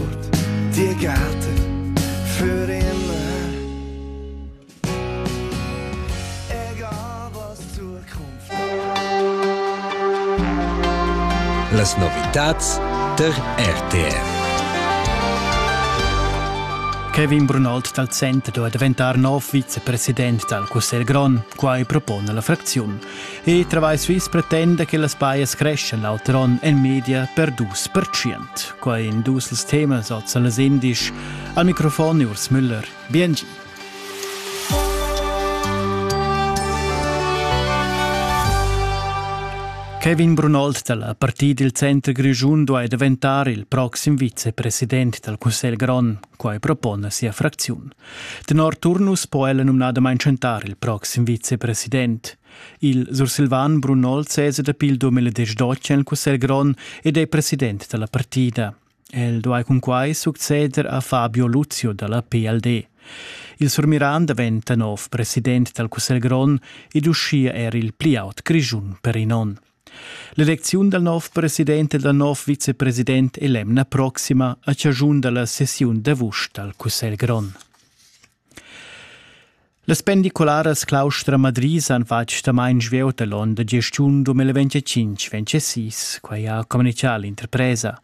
curt dir gatte für immer. Egal was Zukunft. Las novitats der RTR. Kevin Brunald dal Center da diventar nov vicepräsident dal Cussegl grond. Quai propone la fracziun. E Travai Swiss pretenda che las paias creschan l'auter onn en media per dus percient. Quai in dus els temas oz las indisch. Al microfon Urs Müller. Bienvenue. Kevin Brunold dalla Partì dil Center Grischun duai daventar il proxim vicepresident dal Cussegl grond. Quai propona sia fracziun. Tenor Turnus po ella numnadamain chantar il proxim vicepresident. Il sursilvan Brunol sesa dapi il 2012 en il Cussegl grond ed è president da la partida. El duai cunquai succeder a Fabio Luzio da la PLD. Il surmiran daventa nov president dal Cussegl grond ed uschia er il pli aut Grischun per in onn. L'elecziun dal nov president e dal nov vicepresident è l'emna proxima a chaschun da la sessiun d'avust dal Cussegl grond. Las pendicularas Claustra Madrid han fatg damain svelt a l'onn da gestiun 2025 26, quai ha communitgà l'interpresa.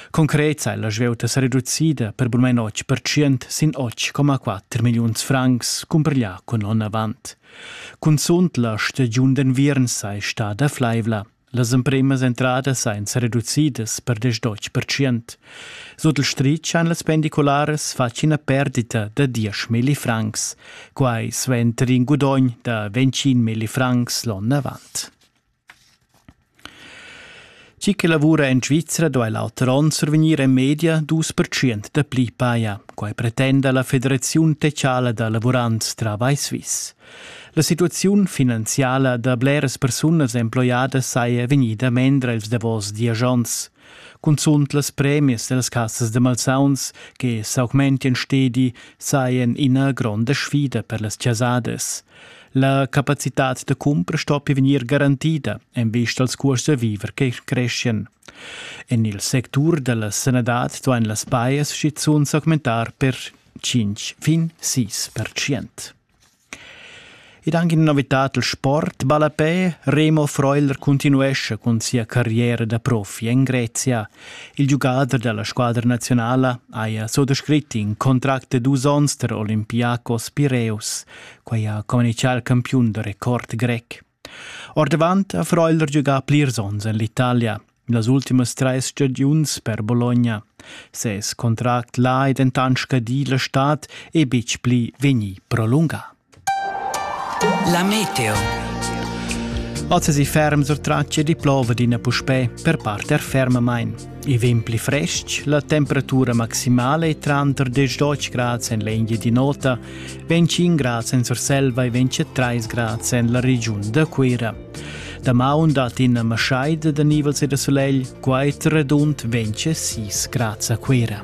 Concret è la svelta sa reducida per burmain 8% sin 8,4 milliuns francs cumparglià cun l'onn avant. Cunzunt la stagiun d'enviern sai stada flaivla. Las empremas entradas ein sereducidas per 10%. Sut il stritg han las pendicularas fatg ina perdita da 10 milli francs, quai suenter in gudogn da 25 milli francs l'onn avant. Chi che lavura en Svizra duai l'auter onn survegnir en media dus pertschient dapli paja. Quai pretenda la Federaziun techala da lavurants Travai Suisse. La situaziun finanziala da bleras persunas emploiadas saja vegnida mendra ils davos dies onns. Cunzunt las premias dels cassas de malsauns che s'augmentien stedi saien ina gronda sfida per las chasadas. La capacitad da cumpra stoppi vegnir garantida en vista als cuors da viver che creschien. En il sectur della sanadad duein las bias schizunt s'augmentar per 5 fin 6%. Ed anche in novitad il sport ballapè, Remo Freuler continuescha cun sia carriera da profi en Grezia. Il giugader dalla squadra nazionala haja sottoscrit in contract de dus onns tra Olympiacos Pireus. Quei ha communichà il campiun da record grec. Ordavant ha Freuler giugà plirs onns en l'Italia, las ultimas trais stagiuns per Bologna. Ses contract là è dentant scadì la stad e betg pli vegnì prolungà. La meteo. Oz è si ferm sur tracce di plova d'ina puspè per parter fermamain. I vegn pli frestg, la temperatura maximala è tranter 10 grads en l'Engia di Nota, 25 grads en Surselva e 23 grads en la regiun da Cuira. Damaun dat in maschaida da nivels e da solegl, quai redund 26 grads a Cuira.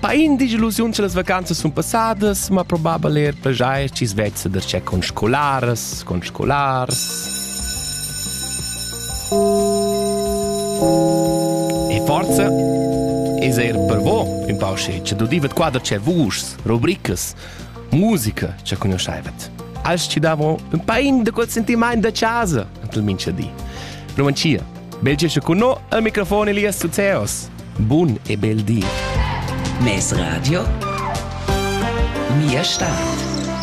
Pain disillusiuns las vacanzas sun passadas, ma probabel er pajair chi's vezza darchè con scolaras, con scolars. E forza es eir per vo ün pau sche cha dudivet qua darchè vuschs, rubricas, musica cha conoschaivet. Als ci davo ün pain da quel sentimaint da casa, ant il mincha di. Romancia Belgio che con no al microfon Elias Zuzeos. Bun e bel di. Mes Radio. Mia Stadt.